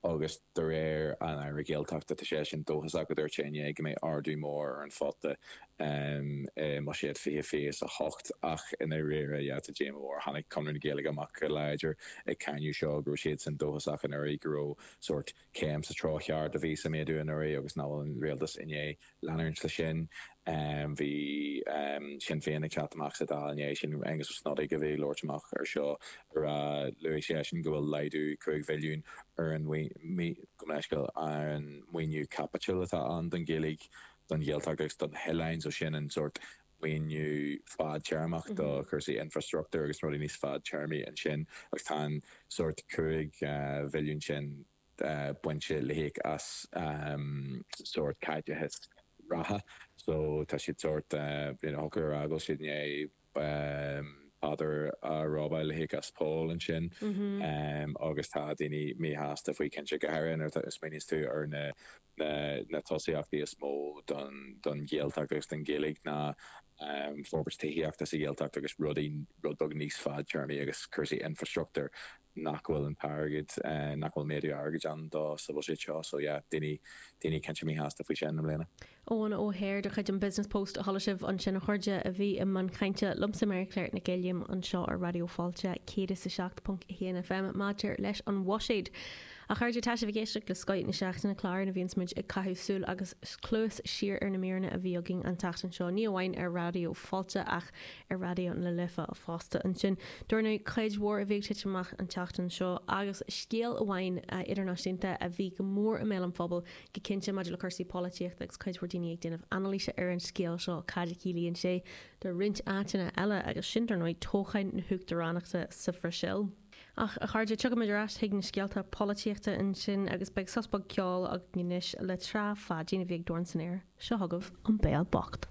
agus de réir an Aire Gaeltachta tá seisean dóchasach, dúirt sé inné go mbeidh ardú mór ar an phota i mBuiséad 2028 ach i ndáiríre sea tá díomá mhór tháinig Conradh na Gaeilge amach go láidir ag cáineadh seo go raibh siadsan dóchasach anuraidh go raibh sórt céim sa treo cheart a bhí sa méadú anuraidh agus nach bhfuil an Rialtas i ndiaidh leanúint leis sin. Bhí Sinn Féin ag teacht amach sa Dáil i ndiaidh sin, Aengus Ó Snodaigh a bhí ag labhairt amach air seo, ar a luaigh seisean go bhfuil laghdú cúig mhilliún ar an gabh mo leithscéal ar an maoiniú caipitil atá ann don Ghaeilge, don Ghaeltacht agus do na hoileáin, so sin an sórt maoiniú fadtéarmach do chúrsaí infreastruchtúir agus rudaí níos fadtéarmaí ansin agus tá an sórt cúig mhilliún sin. bainte le híoc as sórt caiteachas reatha so tá siad sórt you know thiocfadh a rá go bhfuil siad i ndiaidh Peadar a robáil le híoc as Pól ansin agus tá daoine míshásta faoi cinnte, go háirithe nuair a smaoiníos tú ar na na tosaíochtaí is mó don don Ghaeltacht agus don Ghaeilge ná forbairt tithíochta sa Ghaeltacht agus rudaí rud beag níos fadtéarmaí agus cúrsaí infreastruchtúir nach bhfuil an t-airgead, nach bhfuil méadú airgid ann dó sa bhuiséad seo. So yeah, daoine, daoine cinnte míshásta faoi sin i mbliana. Eoin O'Hare de chuid an Business Post a chuala sibh ansin a chairde, a bhí i mbun cainte liomsa, Mary Claire Nic Uilliam, anseo ar Raidió Fáilte 107.1 FM maidir leis an bhuiséad. A chairde, tá sibh ag éisteacht le Scoith na Seachtaine, clár ina bhíonns muid ag caitheamh súil agus cluas siar ar na míreanna a bhí againn an tseachtain seo, ní amháin ar Raidió Fáilte ach ar Raidió na Life fosta. Ansin, dar ndóigh cuid mhór a bhí ag titim amach an tseachtain seo agus scéal amháin idirnáisiúnta a bhí go mór i mbéal an phobail go cinnte maidir le cúrsaí polaitíochta agus cuid mhór daoine ag déanamh anailíse ar an scéal seo, cad a chiallaíonn sé do roinnt áiteanna eile agus sin, dar ndóigh, toghcháin na huachtaránachta sa Bhrasaíl. Ach, a chairde, tiocfaimid ar ais chuig na scéalta polaitíochta ansin agus beidh sos beag ceoil againn anois le Trá Pháidín a bhí ag Dorn san Aer. Seo chugaibh An Béal Bocht.